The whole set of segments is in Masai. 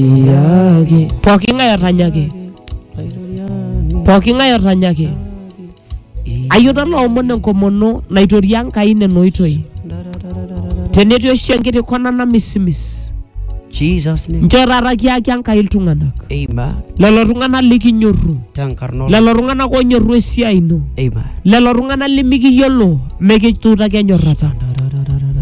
Yaki. pooki ng'ae otanyaki pooki ng'ae otanyaki ayiota loomon enkomono naitoria Enkai nena oitoi tenetii oshi enkiti kona namisimis Jesus name. nchoo taata kiaki Enkai iltung'anak Amen. lelo tung'anak likinyorru Tenkarna lelo tung'anak onyorru esiai ino Amen. lelo tung'anak limikiyiolo mikituutaki enyorrata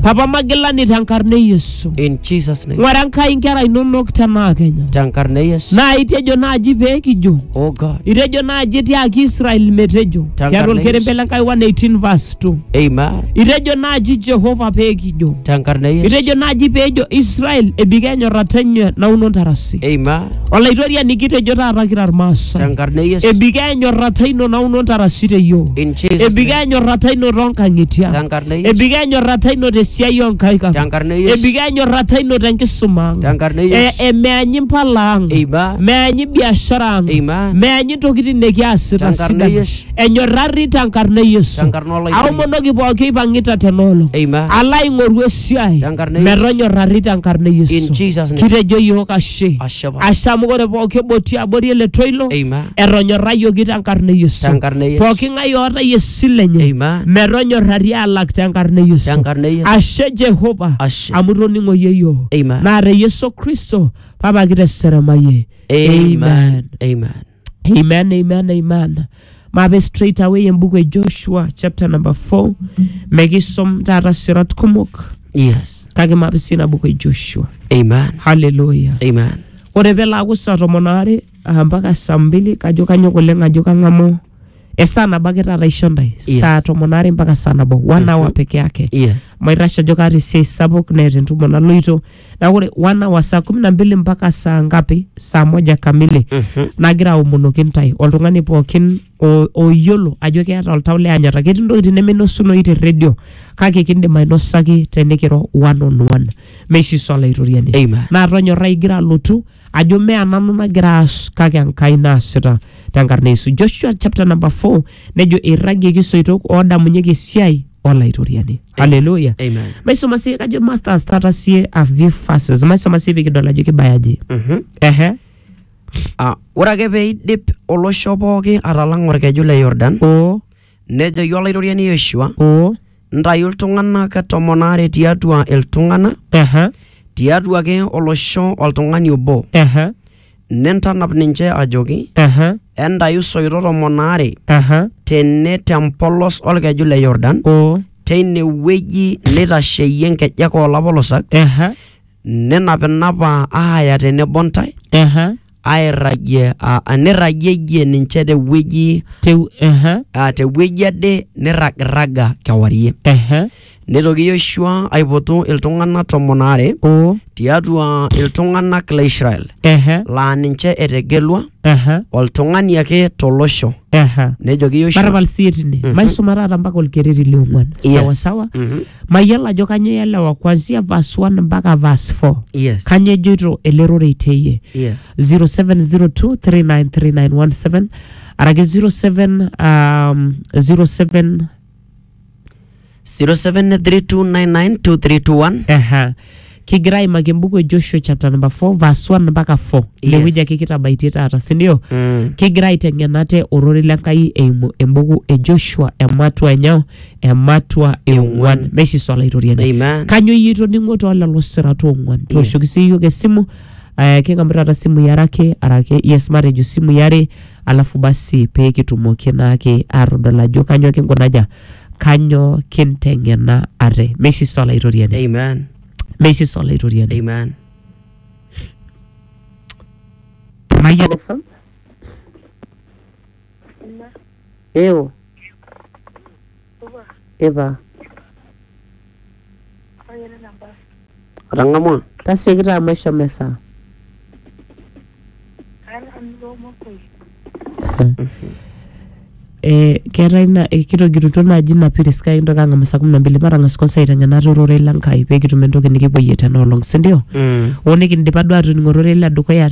papa magilani tenkarna e yesu In Jesus' name. ng'ura nkai nkera inonok tenaa kenya Tenkarna e Yesu. naa itejo naaji pee kijo Oh God. itejo naaji tiaki israel metejo Tankarna tiatua olkerembe Yesu. le nkai 118 verse 2 Amen. itejo naaji jehova pee kijo Tenkarna e Yesu. itejo naaji peejo israel ebika enyorrata enye nauno ntarasi Amen. Olaitoriani kitejo taata kira Irmaasai. Tenkarna e Yesu. Ebikoo enyorrata ino nauno ntarasi te yiok. In Jesus' Ebikoo name. enyorrata ino toonkang'itie ang'. Tenkarna e Yesu. Ebikoo enyorrata ino tesiai oonkaik ang'. Tenkarna e Yesu. Ebikoo enyorrata ino tenkisuma ang'. Tenkarna e Yesu. E- e- Meanyi mpala ang'. Amen. Meanyi biashara ang'. Amen. Meanyi ntokitin nikiasita Tenkarna e sidan. Yesu. enyorrarri tenkarna e Yesu. Tenkarna Olairrioni. Aomonoki pooki oipang'ita tena olong. Amen. Alo aing'oru esiai Tenkarna e Yesu. metonyorrarri tenkarna e Yesu. In Jesus' name. Kitejo iyiook ashe. Ashe apa. Ashe amu ore pooki obotii abori ele toilo Amen. etonyorrayioki tenkarna e Yesu. Tenkarna e Yesu. Pooki ng'ae oota esile enye Amen. metonyorrari alak tenkarna e Yesu. Tenkarna e Yesu. Ashe Jehova Ashe. amu itoning'o iyie iyiook. Amen. Naa te Yesu Kristo papa kiteseremayie. Amen. Amen. Amen, amen, amen. Mabe straight away embuku e Joshua chapter number 4. Mekisom taata sirat kumok Yes. kake mabe sii ina buku e Joshua. Amen. Hallelujah. Amen. Ore pelaaku saa tomon aare ah, mpaka saa mbili kajo kanyok oleng ajo kang'amu esaa nabo ake taata aisho ntae Yes. saa tomon aare mpaka saa nabo one hour peke yake Yes. maitashe ajo kaata esiai sapuk neeta entumo naloito na ore wana wa saa kumi na mbili mpaka saa ngapi saa moja kamili Mhm. nagira aomonoki intae oltung'ani pookin o- oyiolo ajo keeta oltau le anyata ketii ntokitin neminosunoyu te redio kake kindim ainosaki tenikiro one on one meshi swala itoriani Amen. naa tonyorra igira alotu ajo mea nanu nagira aas kake enkai naasita tenkarna yesu joshua chapter number 4 nejo eirragieki isoitok oodamunyeki esiai olaitoriani haleluya Amen. maisoma sie kajo masters taata sie a few verses maisoma sie pikidol ajo kibayaji Mhm. ehe Ah, ore ake pee eidip olosho pooki atalang'a orkeju le yordan o nejoki olaitoriani yoshua o ntayu iltung'anak tomon aare tiatua iltung'anak ehe tiatua ake olosho oltung'ani obo ehe Nentanap ninche ajoki, Aha, Entayu soito tomon aare aha, tene te mpolos olkeju le Yordan, o, teine wueji neitasheyie nkejek oo lapolosak, aha, ninapinapa aaya tenebo ntae, aha, airragie aa- aa, nirragieyie ninche te wueji teu, aha, aa, te wueji ade nirragirraga kewarie. aha. Neitoki Yoshua aipotu iltung'ana tomon aare o tiatua iltung'anak le Israel ehe laa ninche etegelua ehe oltung'ani ake tolosho. ehe Nejoki Yoshua matapal sii tine Mhm. maisuma taata mpaka olkereri liong'uan Yes. sawa sawa Mhm. mayiolo ajo kanyoo ielewa kuanzia verse 1 mpaka verse 4 Yes. kanyoo ejoito ele rorei teyie Yes. 0702393917 araki 07 um, 07 0732992321 Aha. kigira aimaki embuku e joshua chapter number 4 verse 1 mpaka 4 Yes. inewueji ake kitabaitie taata sindio Mm. kigira aiteng'en ate ororei le nkai eimu embuku e joshua ematua enyoo ematua eong'uan naishisu olaitoriani Amen. kanyo iyie itoning'o too lelo sirat oong'uan tooshoki sii iyiok esimu eh, king'amu taata simui are ake arake yes matejo simui are alafu basi pee kitumoki naake aatodol ajo kanyoo kinkunaja, kanyoo kinteng'ena ate. Meisisa Olaitoriani, Amen. meisisa Olaitoriani. Amen. Mayiolo fam. Ewo. Ipa. Otang'amua? Tasioki taa maisho mesaa. Eh, keetae na eh, kitogirutua naaji ina piris kake kintoki ang'amu saa kumi na mbili matang'as kwanza aiteng'enata ororei le Nkai pekitum entoki nikipuoyie tena olong sindio Mm. oo nikindipa duo atoning'o ororei le dukuya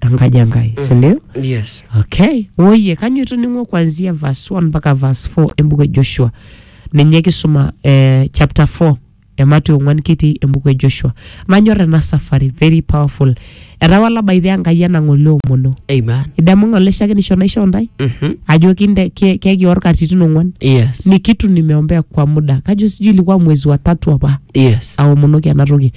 enkaji enkai sindio yes okay oye kanyo itoning'o kuanzia verse 1 mpaka verse 4 embuku e joshua ninye kisuma eh, chapter 4 emati ong'uan kitii embuku e joshua manyor ena safari very powerful etawala by the enkai enang'ole omono amen idamu ng'ole shakenisho naishoo ndai Mhm. ajo kinde ke- kekior katitin ong'uan yes nikitu nimeombea kwa muda kajo sijui ilikuwa mwezi wa tatu apa yes aomonoki ena toki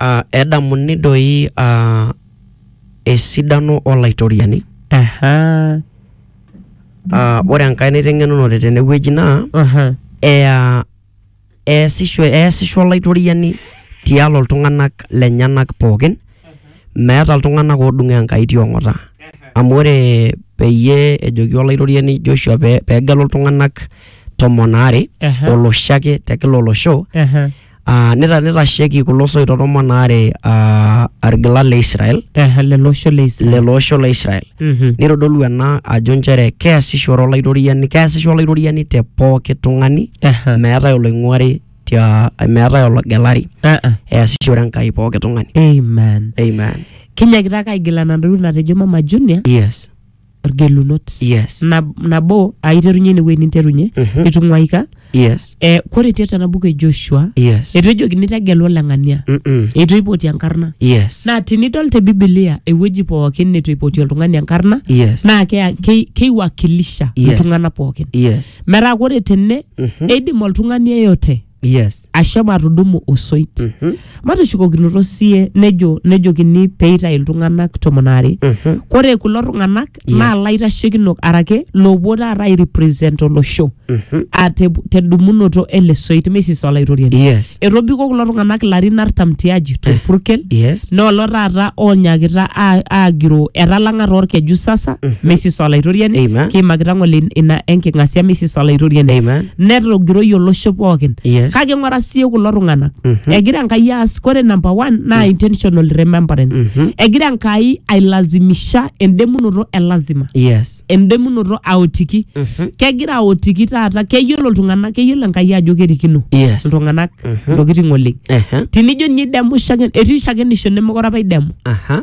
Aa edamuni doi aa esidano o Laitoriani. Ahaa. Aa ore enkae naiteng'enunote tene wueji naa ea eesisho eesisho Olaitoriani tialo iltung'anak lenyenak pookin meeta iltung'anak oodung' Enkai ti ong'ata. Amu ore peyie ejoki Olaitoriani Joshua pee pee egelu iltung'anak tomon aare, oloshi ake te kila olosho Aa nita- nitasheki kulo soito tomon aare aa irgilat le Israel Eh, lelo osho le Israel. lelo osho le Israel Mhm. nitodolu ena ajo nchere keasishore olaitoriani keasisho olaitoriani te pooki tung'ani Eh, meetae oloing'uari tia meetae ologelari ah, ah. easishore enkai pooki tung'ani Amen. amen Kinyakita ake aigilana ntokitin natejo Mama Junior. yes ilgelunot Yes. Nab- nabo aiterunye inewueji ninterunye Mhm. itung'uaika Yes. eh, kore tiatua ena buku e joshua Yes. eitu ejokini tegelu oleng'ania Mm-mm. eitu eipoti enkarna Yes. naa tinidol te bibilia ewueji pookin neitu eipoti oltung'ani enkarna Yes. naa kea- kei- keiwakilisha Yes. iltung'anak pookin Yes. metaa kore tene eidim oltung'ani yeyote yes ashomo atudumu osoit Mhm. matushukokinoto sie nejo nejokini peitayu iltung'anak tomon aare Mhm. kore kulo tung'anak Yes. naa laitashekinok arake loopuo taata airepresent olosho Mhm. a te- tedumunoto ele soit mesis olaitoriani yes etobiko kulo tung'anak larin artam tiaji torpurkel yes noolo taata oonyakita a- aagiroo etalang'a toorkeju sasa mesis olaitoriani Amen. kiimakita ng'ole ina enking'asia mesis olaitoriani amen netogiroyie olosho pookin Yes. kake ng'ura sie kulo tung'anak Mhm. egira enkai aas kore number one naa intentional remembrance Mhm. egira enkai ailazimisha endemunoto e lazima yes endemunoto aotiki Mhm. kegira aotiki taata keyiolo iltung'anak keyiolo enkai ajo kerikino yes iltung'anak Mhm. ntokitin oleng Ehe. tinijo ninye idemu shake etii shakenisho nemekure apa idemu aha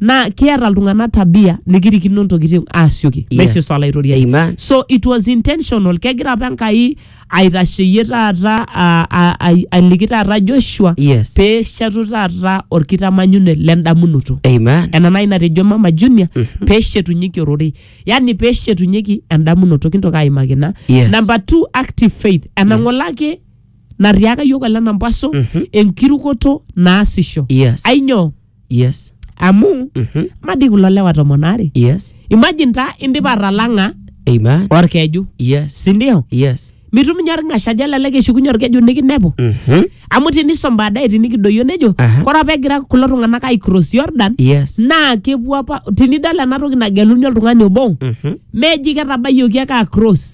naa kiata iltung'anak tabia nikirikino ntokitin aasioki Yes. basis olaitoriani Amen. so it was intentional kegira apa enkai aitasheyie taata a- a- ai- aliki taata joshua Yes. pee eshetu taata orkitamanyune lendamunoto Amen. ena nai natejo mama junior pee eshetunyeki ororei yani pee eshetunyeki endamunoto kintoki aimaki ina Yes. number two active faith enang'olaki natiaka yiok ele nampaso enkirukoto naasisho Yes. ainyoo yes amu Mhm. madi kulo lewa tomon aare yes imagine taa indipa atalang'a amen orkeju yes sindio yes mituminya orng'ashaja lelek eshukunye orkeju nikinepu Mhm. amu tinisom baadaye tinikidoyio nejo Aha. kore apa egira kulo tung'anak aicross jordan yes naa kepuo apa tinidol ena toki nageluni oltung'ani obo Mhm. meji ketabayioki ake across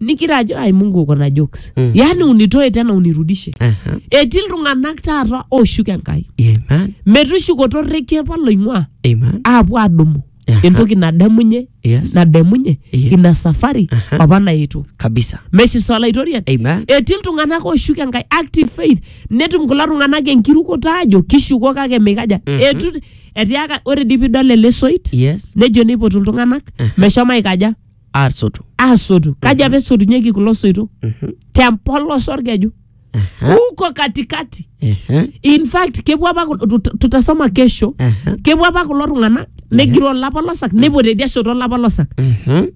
nikira ajo ai mungu uko na jokes Mm. yaani unitoe tena unirudishe Aha. etii iltung'anak taata ooshuk enkai Amen. metushukoto orrekie apa loing'ua Amen. aapuo adumu Aha. entoki nadamunye Yes. nadamunye Yes. ina safari Aha. apa naetuo Kabisa. meshiso olaitoriani Amen. etii iltung'anak ooshuk enkai active faith netum kulo tung'anak enkirukoto aajo kishuko kake mikaja Mhm. etu etiaka ore dii pidol ele soit Yes. nejo neipotu iltung'anak Aha. meshomo aikaja aasotu aasotu kaji apa esotunyeki kulo soito Mhm. tempolos orkeju Aha, huko katikati aha, in fact kepuo apa kul- tut- tutasoma kesho aha, kepuo apa kulo tung'anak negiro olapa losak nepuo tedia shoto olapa losak mhm.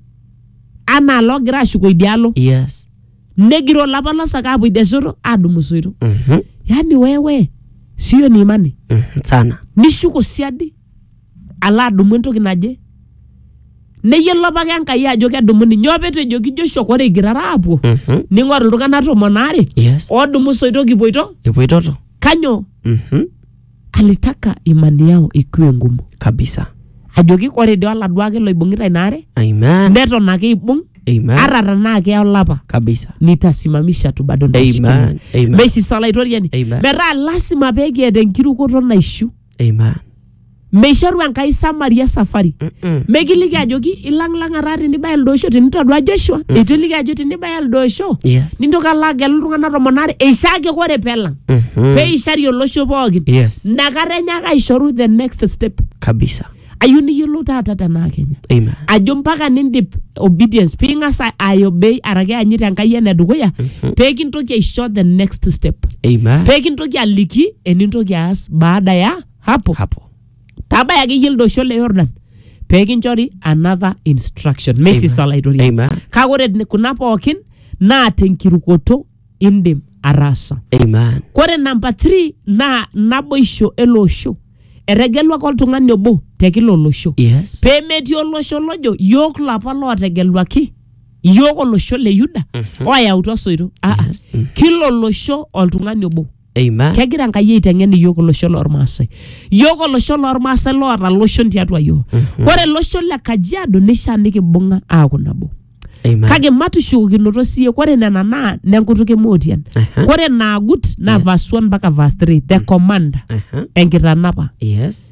anaa loogira ashuko idialo yes negiro olapa losak aapuo idia shoto aadumu soito Mhm, yaani wewe sio ni imani mhm, sana nishuko siadi alo adumu entoki naje neyiolo apake Enkai ajo kedumuni nyoo petejo kijo shoki ore igirara aapuo Mhm. ning'oru iltung'anak tomon aare Yes. oodumu isoito kipuoito Ipuitoto. kanyoo Mhm. alitaka imani yao ikiwe ngumu Kabisa. ajoki ore dii oladuo ake loibung'ita ina are Amen. neton ake ibung Amen. ata tenaa keya olapa Kabisa. nitasimamisha tu bado Amen. nitashikilia Amen. mesisalaitoria ni Amen. metaa lasima pekiata enkirukoto naishu Amen. meishoru enkai samaria safari Mm-mm. mekiliki ajoki ilang'lang'a taa tinibaya elde osho tinitodua joshua mm. eitu eliki ajo tinibaya elde osho Yes. nintoki alo agelu iltung'anak tomon aare eishaake ore pelang Mhm. peishari olosho pookin Yes. nakata enyaaka aishoru the next step Kabisa. ayieu niyiolou taata tenaa kenya Amen. ajo mpaka nindip obedience ping'as a- aiobey araki anyit enkai ene dukuya pee kintoki aisho the next step Amen. pee kintoki aliki enintoki aas baada ya hapo Hapo. tabaya akeyie ildosho le yordan pee kinchori another instruction meisisa Amen. olaitoriani Amen. kake ore kuna pookin naa tenkirukoto indim ataasa. Amen. Kore namba 3 naa naboisho ele osho. Etegeluaki oltung'ani obo te kila olosho. Yes. Pee metii olosho lojo yook lapa lootegeluaki yook olosho le Yuda oyautua soito. Ah, ah. Kila olosho oltung'ani obo. Amen. kegira enkai aiteng'en iyiook olosho lormaasai iyiook olosho lormaasai loota loshon tiatua iyiook ore olosho le kajiado nishaa nikibung'a aaku nabo Amen. kake matushukokinoto siye kore nena naa nenkutuk emootian Aha. kore naagut naa verse 1 mpaka verse 3 the command Aha. enkitanapa Yes.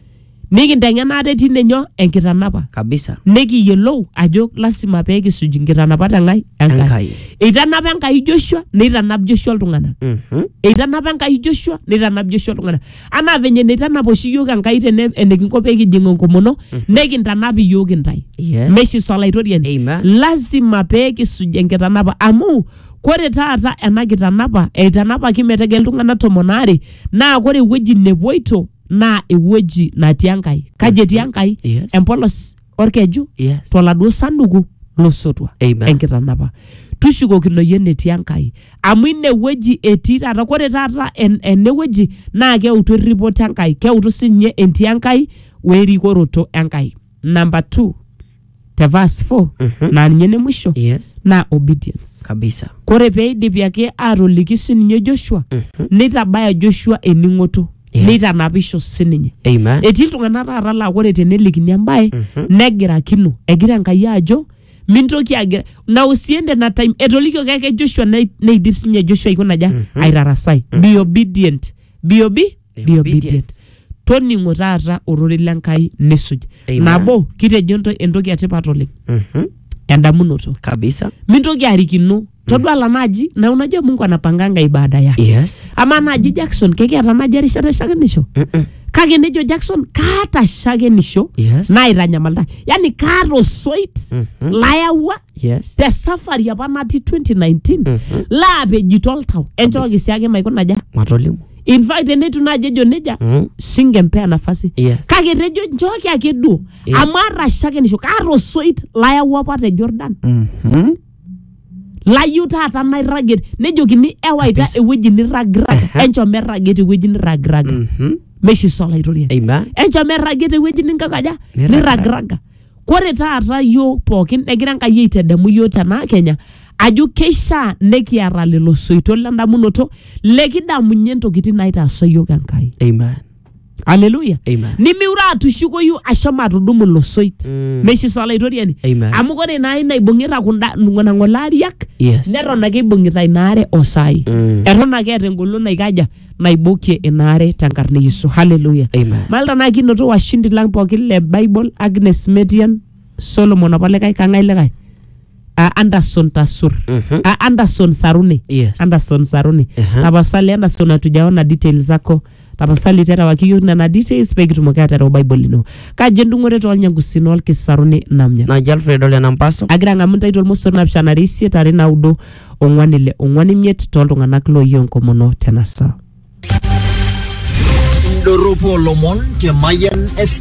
nikinteng'ena ate tine nyoo enkitanapa kabisa nikiyiolou ajo lasima pee kisuj nkitanapat eng'ai Enkai. Enkai. Eitanapa Enkai Joshua neitanap Joshua iltung'anak. Mhm. Eitanapa Enkai Joshua neitanap Joshua iltung'anak. Anaa venye neitanap oshi iyiook Enkai tene enikinko pee kijing enkomono nekintanap iyiook intae. Yes. Meshi solaitoriani. Amen. Lasima pee kisuj enkitanapa amu kore taata ena kitanapa eitanapaki metegel iltung'anak tomon aare naa kore ewueji nepuoito naa ewueji natii Enkai. Kaji etii Enkai? Yes. Empolos olkeju Yes. toladuo sanduku losotua Amen. enkitanapa. Tushukokino iyie enetii Enkai. Amu inewueji etii taata. Kore taata en- enewueji naa keutu erripoto Enkai. Keutu sinye entii Enkai werikoroto Enkai. Number two. te verse 4 Mhm. naa ninye ene mwisho Yes. naa obedience Kabisa. kore peidipi ake atoliki sininye joshua Mhm. neitabaya joshua ening'oto Yes. neitanapisho sininye Amen. etii iltung'anak taata laa kore tenelikini embae Mhm. negirakino egira enkai ajo mintoki agira na usiende na time etolikioki ake joshua nei- neidip sinye joshua aikonaja aitarasai be obedient be obe be obedient toning'o taata ororei le nkai nisuj Amen. nabo kitejo ento- entoki etipat oleng Mhm. endamunoto kabisa mintoki arikino todua la naji na unajua mungu anapanganga ibada yake yes ama naji jackson kekiata naji erishata eshakenisho Mm-mm. kake nejo jackson kaata shakenisho yes naitanyamalita yani kaata osoit Mhm. layawua yes te safari apa natii 2019 laapejito oltau enchooki siake maikuna aja matolimu in fact teneitu naaji ejo nejia Mm. singempea nafasi Yes. kake etejo nchooki ake duo Yeah. amu aata shakenisho kaata osoit layau apa te jordan Mhm. layieu taata nairragie nejokini ewaita Kabisa. ewueji nirragirraga Ehe. enchom erragie tewueji nirragirraga Mhm. meishiso olaitoriani amen enchom erragie tewueji ninkakaja Nirragirraga. nirragirraga Kore taata yiok pookin egira Enkai aitadamu yiok tena Kenya ajo keishaa nekiata lelo soito lendamunoto lekidamunye ntokitin naitaasa yiok Enkai. Amen. Haleluya. Amen. Nimiure atushukoyu ashomo atudumu ilo soit. Mm. Meshiso olaitoriani. Amen. Amu kore ina aina ibung'ita kunda nena ng'ole ariak Yes. neton ake ibung'ita ina are osai. Mm. Eton ake eeta engolon naikaja naibukie ina are tenkarna e Yesu. Haleluya. Amen. Malta naa kinoto washindi lang pookin le Bible, Agnes Metian, Solomon apa likae kang'ae likae Ah, Anderson Tasur. Mhm. Ah, Anderson Saruni. Yes. Anderson Saruni. Aha. Tapasali Anderson hatujaona details zako. Tapasali terewaki yiok nena details pee kitumoki aterewa Bible ino. Kaji endung'oto toolnyangusin olkisaruni namnya. Naji Alfred Ole Nampaso. agira ang'amu ntae tormosor naapishana are isiet are naudo ong'wan ile ong'wan imiet tooltung'anak looyie enkomono tena saa. Indorropu olomon te Mayian FM.